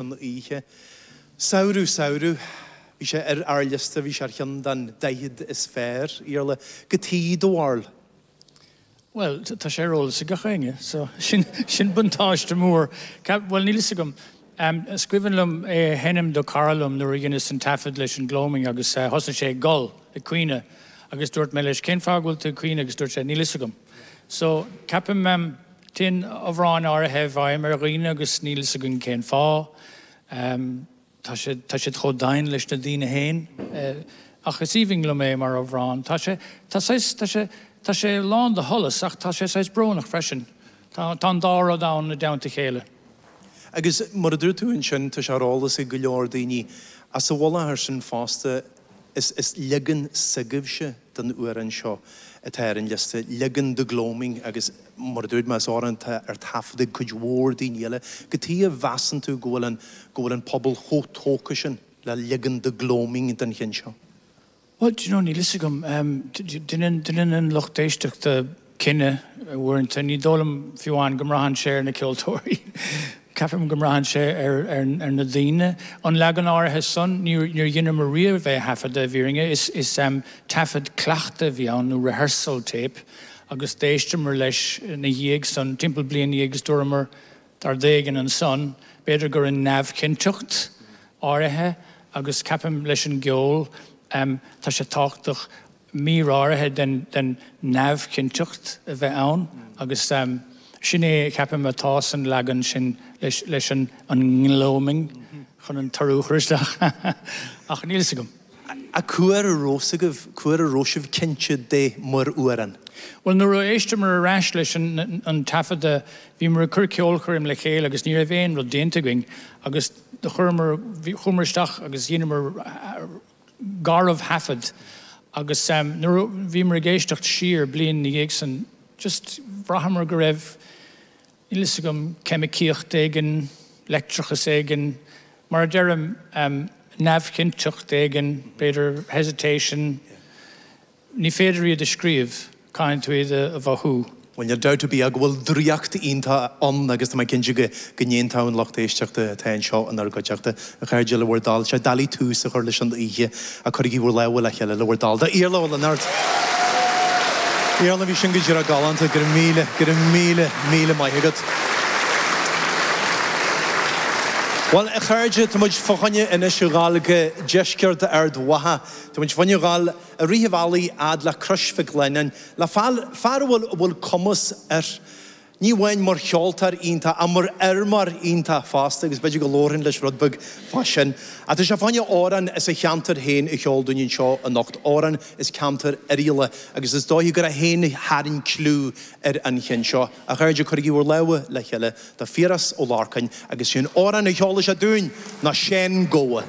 an oíche. Samhradh, samhradh. Bhí sé ar ár liosta, bhí sé ar cheann den daichead is fearr, Iarla, goidé do bharúil? Bhuel, tá sé ar eolas ag gach éinne, so sin buntáiste mór. Bhuel, níl 'fhios agam. Is cuimhin liom é a sheinm do cara liom nuair a dheineas an taifead leis an Gloaming agus thosaigh sé ag gol, ag caoineadh, agus dúirt mé leis cén fáth go bhfuil tú ag caoineadh agus dúirt sé níl 'fhios agam. So, ceapaim. Téann amhráin áirithe i bhfeidhm ar dhaoine agus níl 'fhios againn cén fáth. Tá siad, tá siad chomh domhain leis na daoine féin. Ach is aoibhinn liom é mar amhrán. Tá sé, tá saghas, tá sé, tá sé lán de sholas ach tá sé saghas brónach freisin. Tá, tá an dá rud ann i dteannta a chéile. Agus mar a dúirt tú ansin, tá sé ar eolas ag go leor daoine sa mhullach air sin fosta, Is is leagan s'agaibhse den amhrán seo atá ar an liosta, leagan The Gloaming agus, mar a dúirt mé, is amhrán atá ar taifead ag cuid mhór daoine eile. Goidé a mheasann tú go bhfuil an go bhfuil an pobal chomh tógtha sin le leagan The Gloaming den cheann seo? Bhuel, do you know, níl fhios agam. Deineann an lucht éisteachta cinneadh, uaireanta ní dóigh liom fiú amháin go mbraitheann sé ar na ceoltóirí, ceapaim go mbraitheann sé ar na daoine. An leagan áirithe san, níor dheineamar riamh é a thaifeadadh, i bhfírinne, is taifead cleachta a bhí ann, nó rehearsal tape, agus d'éisteamar leis ina dhiaidh san, timpeall bliain ina dhiaidh, agus dúramar tá rud éigin ansan, b'fhéidir gur in neamhchinnteacht áirithe, agus ceapaim leis an gceol, tá sé tábhachtach, mír áirithe den neamhchinnteacht a bheith ann agus sin é ceapaim atá san leagan sin leis an nGloaming chun an t-urú a chur isteach ach níl fhios agam. Ach cá huair a raibh a fhios agaibh, cá huair a raibh sibh cinnte de mar amhrán? Bhuel nuair a éisteamar ar ais leis an taifeadadh bhíomar ag cur ceolchoirm le chéile agus ní raibh aon rud déanta againn agus chuireamar, chuamar isteach agus dheineamar, garbhthaifead agus nuair a bhíomar ag éisteacht siar bliain ina dhiaidh san just bhraitheamar go raibh, níl a fhios agam, ceimicíocht éigin, leictreachas éigin, mar a deirim, neamhchinnteacht éigin, b'fhéidir hesitation, Ní féidir iad a scríobh, caithfidh tú iad a mhothú. Bhuel, níl dabht ar bith agam go bhfuil draíocht iontach ann agus tá mé cinnte de go n-aontódh an lucht éisteachta atá anseo inár gcuideachta, a chairde, le bhur dtoil. Sea, dóigh le tús a chur leis an oíche, ach cuirigí bhur lámha le chéile le bhur dtoil do Iarla Ó Lionáird! Iarla, bhí sin go díreach galánta, go raibh míle, go raibh míle, míle maith agat. Bhuel, a chairde, tá muid fá choinne Inis Oírr Ghailge, Deisceart Ard Mhacha. Tá muid fá choinne a ghabháil. Uilig an bealach fhad le Crois Mhic Lionnáin, le fear fear a bhfuil a bhfuil cumas air, ní amháin mar cheoltóir iontach ach mar fheirmeoir iontach fosta agus b'fhéidir go labharfainn leis rud beag fá sin. Ach tá sé chun amhrán as a cheantar féin a cheol dúinn anseo anocht, amhrán as ceantar Oirialla agus is dóigh gurb é féin a tharraing cliú ar an cheann seo. A chairde, cuirigí bhur lámha le chéile do Phiaras Ó Lorcáin agus is é an t-amhrán a cheolann sé dúinn ná 'Seán Gabha'.